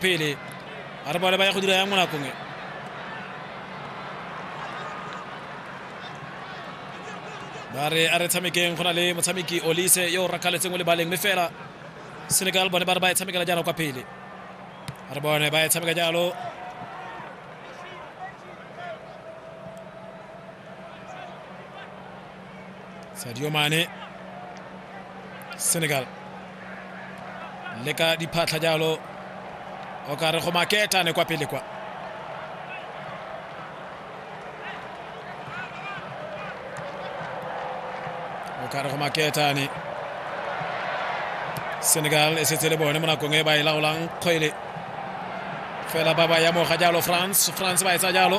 pele a re bale ba ya go dira yang mo nakong e ba re a re tshamekeng go na le motshameki olise yo o rakgaletseng o le baleng mme fela senegal bone ba re ba e tshamekela jalo kwa pele a re bone ba e tshameka jalo Sadio Mane Senegal le ka diphatlha jalo o ka re go maketane kwa pele kwa o ka re go maketane senegal e setse le bone mo nakong e ba e laolang kgwele fela ba ba yamoga jalo france france ba etsa jalo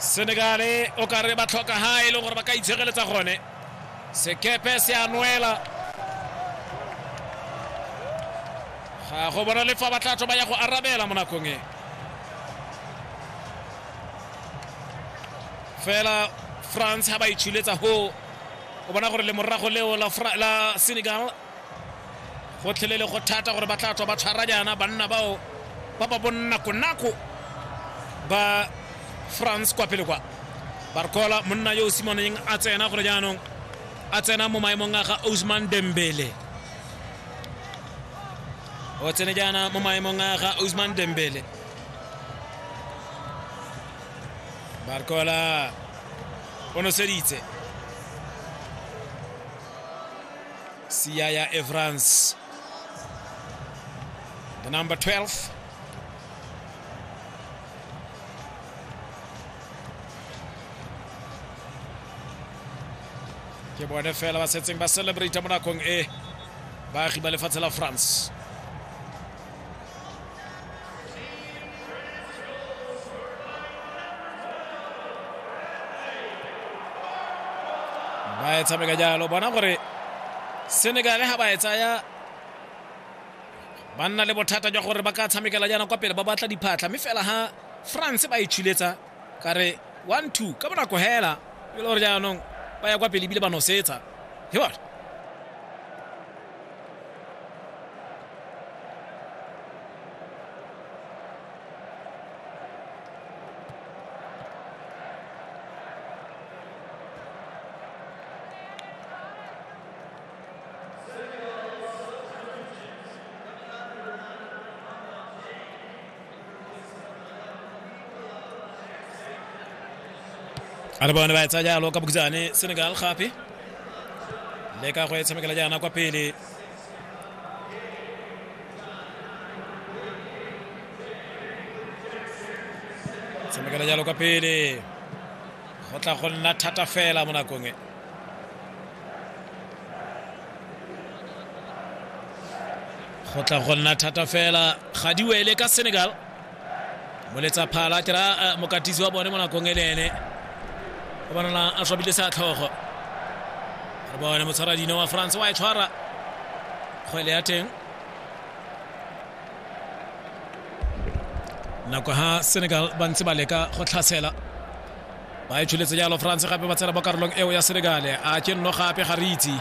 senegale o ka re ba tlhoka ha e leng gore ba ka itshegeletsa gone sekepe se a nwela ga go bona le fa ba tla tswa ba ya go arabela mo nakong e fela france ha ba itshuletsa ho o bona gore le morago leo la senegal gotlhelele go thata gore ba tla tswa ba tshwara jaana banna bao ba ba bonnakonako ba france kwa pele kwa barcola monna yo o simoneng a tsena gore jaanong a tsena mo maemong a ga osman dembele o tsene jaana mo maemong a ga osman dembele barcola o noseditse Siyaya Evans, the number 12. ke bone fela ba setseng ba celebrate mo nakong e baagi ba lefatshe la france ba e tshameka jalo bona gore senegal ga ba e tsaya ba nna le bothata jwa gore ba ka tshamekela jaana kwa pele ba batla diphatlha mme fela ha france ba e tshuletsa ka re one two ka bonako hela e le gore jaanong ba ya kwa pele ebile ba nosetsa he bona are bone ba etsa jalo ka bokitsane senegal gape le ka go e tshamekela jaana kwa pele tshamekela jalo kwa pele go tla go nna thata fela mo nakong e go tla go nna thata fela ga di wele ka senegal moletsa phala ke ra eh, mokatisi wa bone mo nakong e le ene o bonala a swabile sa tlhogo re bone motshwara dino wa france wa e tshwara kgwele ya teng nako ha senegal ba ntse ba leka go tlhasela ba e tsholetse jalo france gape ba tshela mo karolong eo ya senegale a ke nno gape ga re itse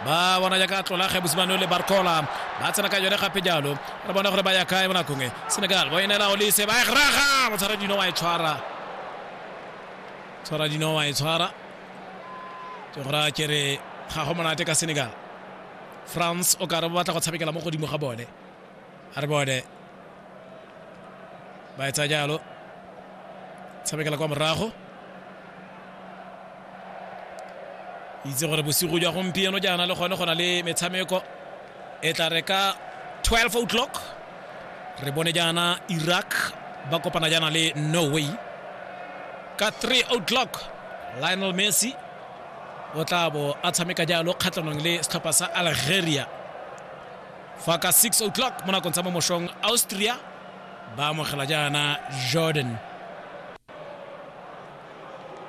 ba bona jaaka tlola kgebosimane le barcola ba tsena ka yone gape jalo re bona gore ba ya kae mo nakong e senegal bo e neela olise ba e graga motshwara dino wa e tshwara tshwara dino wa e tshwara ke gore a kere ga go monate ka senegal france o kare ba batla go tshamekela mo godimo ga bone a re bone ba etsa jalo tshamekela kwa morago itse gore bosigo jwa gompieno jaana le gone go na le metshameko e tla re ka 12 o'clock re bone jaana iraq ba kopana jaana le norway ka 3 o'clock lionel messi o tla bo a tshameka jalo kgatlhanong le setlhopha sa algeria fa ka 6 o'clock mo nakong tsa mo mošong austria ba amogela jaana jordan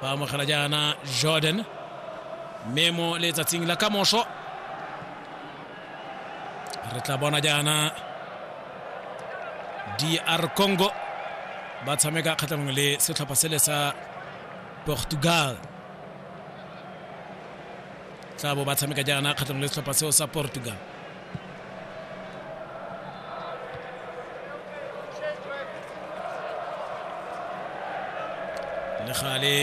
ba amogela jaana jordan mme mo letsatsing la kamoso re tla bona jaana dr congo ba tshameka kgatlhanong le setlhopha sele sa portugal tla bo ba tshameka jaana kgatlhanong le setlhopha seo sa portugal le gale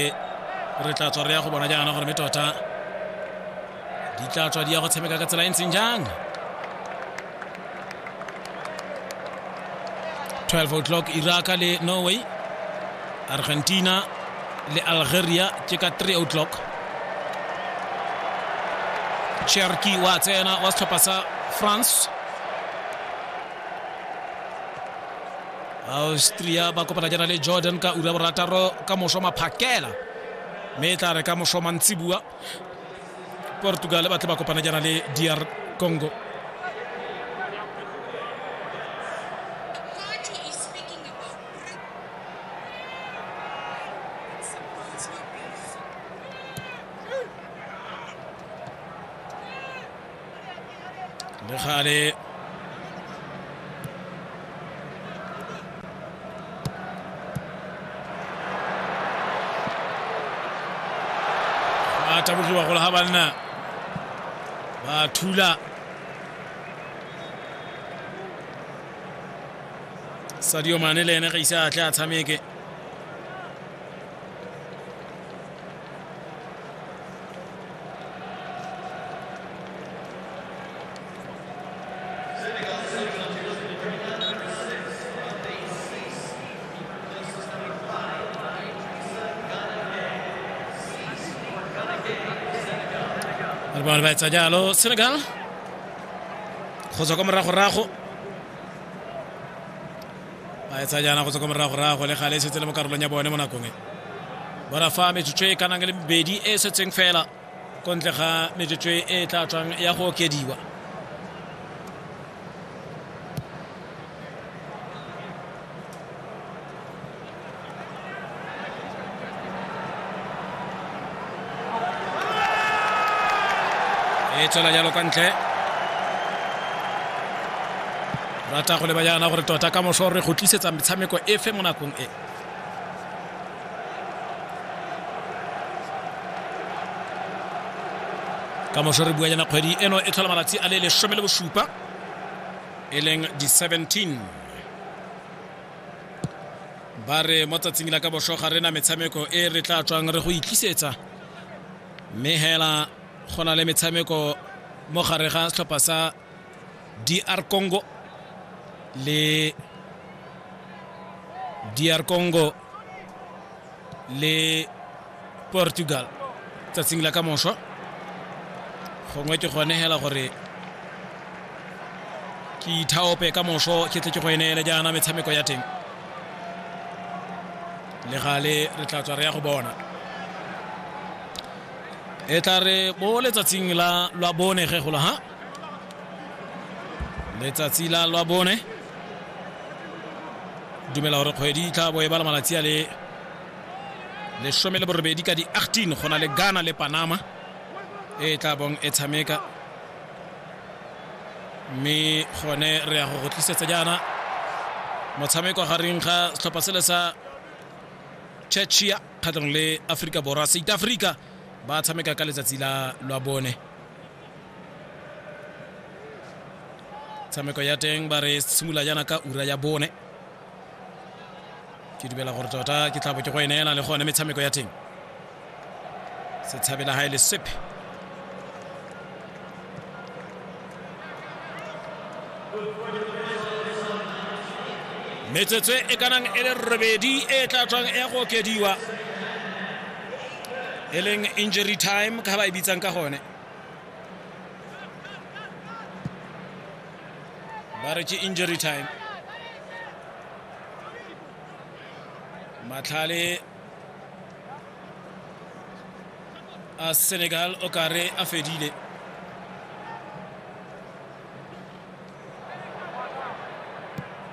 re tla tswa re ya go bona jaana gore me tota di tla tswa di ya go tshameka ka tsela e ntseng jang 12 o'clock iraka le norway argentina le algeria ke ka 3 o'clock cherki wa tsena wa setlhopha sa france austria ba kopana jana le jordan ka ura borataro ka moso maphakela mme e tla re ka moso mantsibua portugal ba tle ba kopana jaana le dr congo le gale ba tabogiwa gole ga banna ba thula sadio mane le ene ga ise a tle a tshameke re bone ba etsa jalo senegal go tswa kwa moragorago ba etsa jaana go tswa kwa morago rago le gale e setse le mo karolong ya bone mo nakong e bona fa metsotso e kanang le bedi e setseng fela ko ntle ga metsotso e tla tswang ya go okediwa e tswela jalo kwa ntle rata go leba jaana gore tota ka moso re go tlisetsa metshameko efe mo nakong e ka moso re bua jana kgwedi eno e tlhola malatsi a le lesome le bosupa e leng di-17 ba re mo tsatsing la ka bošo ga rena metshameko e re tla tswang re go itlisetsa mme hela go na le metshameko mo gare ga setlhopha sa dr congo le dr congo le portugal tsatsing la ka mošwa gongwe ke gone hela gore ke ithaope ka mošo ke tle ke go eneele jaana metshameko ya teng le gale re tla tswa re ya go bona e tla re bo letsatsing la lwa bone ge gola ha letsatsi la lwa bone dumela gore kgwedi e tla bo e bala malatsi a le lesome le borobedi ka di-18 go na le ghana le panama e tla bong e tshameka mme gone re ya go go tlisetsa jaana motshameko gareng ga setlhopha sele sa chechia kgatlhanong le aforika borwa south africa ba tshameka ka letsatsi la lwa bone tshameko ya teng ba re simolola jaana ka ura ya bone ke dumela gore tota ke tlabo ke go e neela le gone metshameko ya teng setshabela ga e le sepe metsotso e ka nang e le robedi e tla tswang e go okediwa e leng injury time ka ba e bitsang ka gone ba re ke injury time matlhale a senegal o ka re a fedile